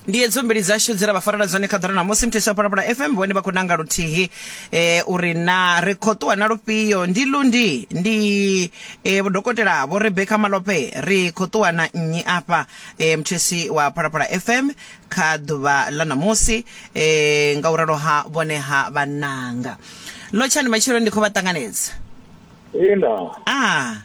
ndi hedzo mbili dzashu dze ra vha farela dzone kha ḓora namusi mtheswa wa phalaphala fm vhone vha khou nanga luthihi eh, uri na ri khou ṱuwa na lufhio ndi lundi ndi eh, vhodokotela vho rebeka malope ri khou ṱuwa na nnyi afha eh, mthesi wa phalaphala fm kha ḓuvha ḽa namusi eh, nga u ralo ha vhone ha vhananga lotshani matshelo ndi khou vha ṱanganedza Ina, ah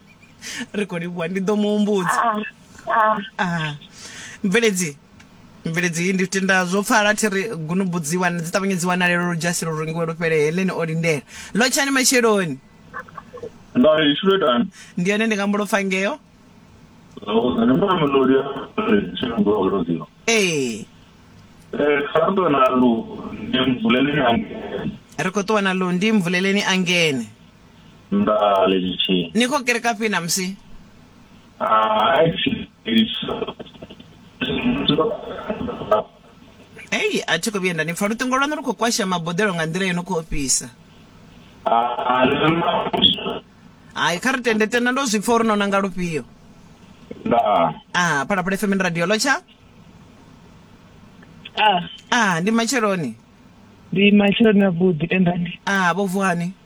ri khou livhuwa ndi ḓo mu humbudza Ah, ah. Ah. mveledzi mveledzi iyi ndi tenda zwo pfala thi ri gunubu dzi wana dzi ṱavhanye dzi wanalelo lu dzhasi lu rungiwe lu fhele heleni o lindela lotshani matsheloni Nda ishule dan. ndi yone ndi nga mbulo pfa ngeo Zwo ne mama lo ya. Tshino ngo lo zio. ee Eh, santo na lu. Ndi mbulele yangu. ri khou ṱuwa na lundi mvuleleni a ngene Nga lexi xi. Ni khou kereka fhi namusi? Ah, Ei, a thi khou vhuya nda ni pfa. Luṱingo lwaṋu lu khou kwasha maboḓelo nga nḓila yo no khou ofhisa. Hai, kha ri tende tenda ndo zwi pfa uri no nanga lufhio. Nga. Ah, Phalaphala FM ndi radio lotsha. Ah, Ah, ndi matsheloni. ndi matsheloni a vhuḓi tendani. Ah, vho vuhani.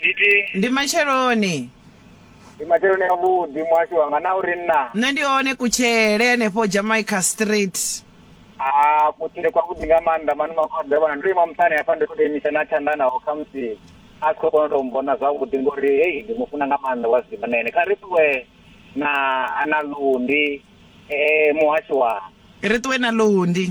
Nditi ndi matsheloni ndi matsheloni avhuḓi muhasho wanga na uri nna nṋe ndi hone kutshele henefho jamaica street a kutshile kwavhuḓi nga maanḓa mani makhoḓa vhona ndo ima muṱani hafha ndi khou tou imisa na tshanḓa naho khamusi a si khou kona u tou mbona zwavhuḓi ngori hei ndi mu funa nga maanḓa wa zwiḓivha na ene kha ri ṱuwe na na lundi um muhasho wa ri ṱuwe na lundi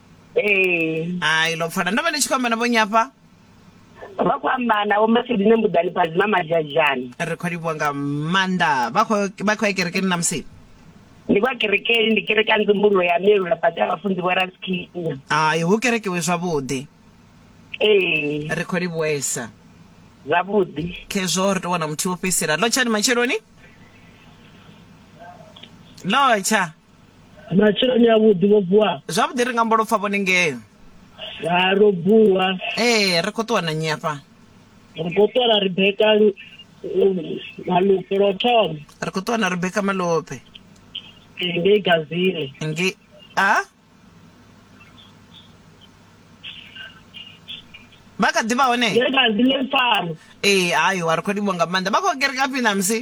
ee hai ḽo pfala ndo vha ndi tshi khou amba na vho nyafha vha khou amba na vho masedine mbuḓani phadzima madzhadzhani ri khou livhuwa nga maanḓa vha khou vha khou ya kerekeni na musi ndi kwa kerekeni ndi kereka nzumbululo ya melula fhasi ha vhafunzi vho raskinya hai hu kerekiwe zwavhuḓi ee ri khou livhuwesa zwavhuḓi khezwo ri tou wana muthihi wo fhedzisela ḽo tshani matsheloni ḽo tsha matshiloni avhuḓi vho vuwa zwavhuḓi ri nga mbo lopfa vhone ngei ha ro vuwa ee ri khou ṱuwa na nnyi afha ri khou ṱuwa na rebeka malope lwo thoma ri khou ṱuwa na rebeka malope ngei gazile nge a vha kha ḓi vha hone ngei gazile fano ee hayo a ri khou livho nga maanḓa vha khou kereka fhi na musi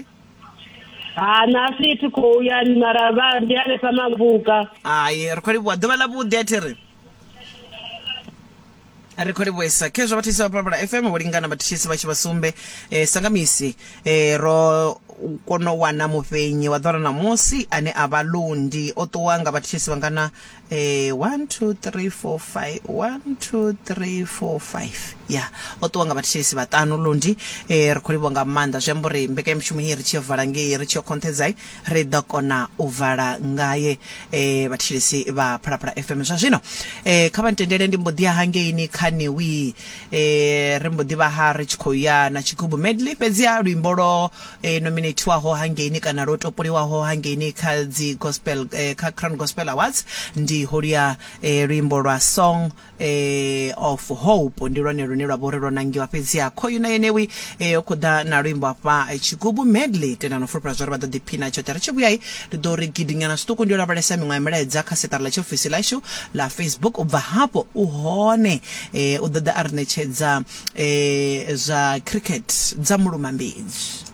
ha nasi thi khou ya mara vha ndi hanefha mavuka hai ri khou livhuwa ḓuvha ḽa vhuḓi a thi ri ri khou livhuesa khezwo vhathisi vha palapala fm vho lingana vhathisi vha tshi vha sumbe eh, sanga misi eh, ro kona u wana mufhenyi wa ḓora ṋamusi ane a vha lundi o ṱuwa nga vhathisi vhangana Eh, one two three four five one two three four five ya o ṱuwa nga vhathetshelesi vhaṱanu lundi eh, ri khou livhwa nga maanḓa zwi amba uri mbekanyamushumo iyi ri tshi yo vala ngei ri tshi yo khonthedzai ri ḓo kona u vala ngaye eh, vhathetshelesi vha phalaphala fm zwa zwino eh, kha vha ntendele ndi mbo ḓi ya hangeini kha niwi eh, ri mbo ḓi vha ha ri tshi khou ya na tshigubu medley fhedzi a luimbo lwo e nominethiwaho hangeini kana lwo topoliwaho hangeini kha dzi gospel eh, kha Crown Gospel Awards ndi holuya eh, luimbo lwa Song eh, of Hope ndi lwone lune lwa vhori lwo nangiwa fhedzi ha khoyu na yenewi eh, o khoḓa na luimbo afha eh, tshigubu medley tenda no fulufhela zwori vha ḓo ḓiphina tshoṱhe ri tshi vhuyai ndi ḓo ri gidinyana zwiṱuku ndi yo lavhelesa miṅwe ya milaedza kha seṱara ḽa tshiofisi ḽashu ḽa Facebook ubva hafho u hone eh, u ḓo ḓa a ri ṋetshedza eh, zwa cricket dza mulumambedzi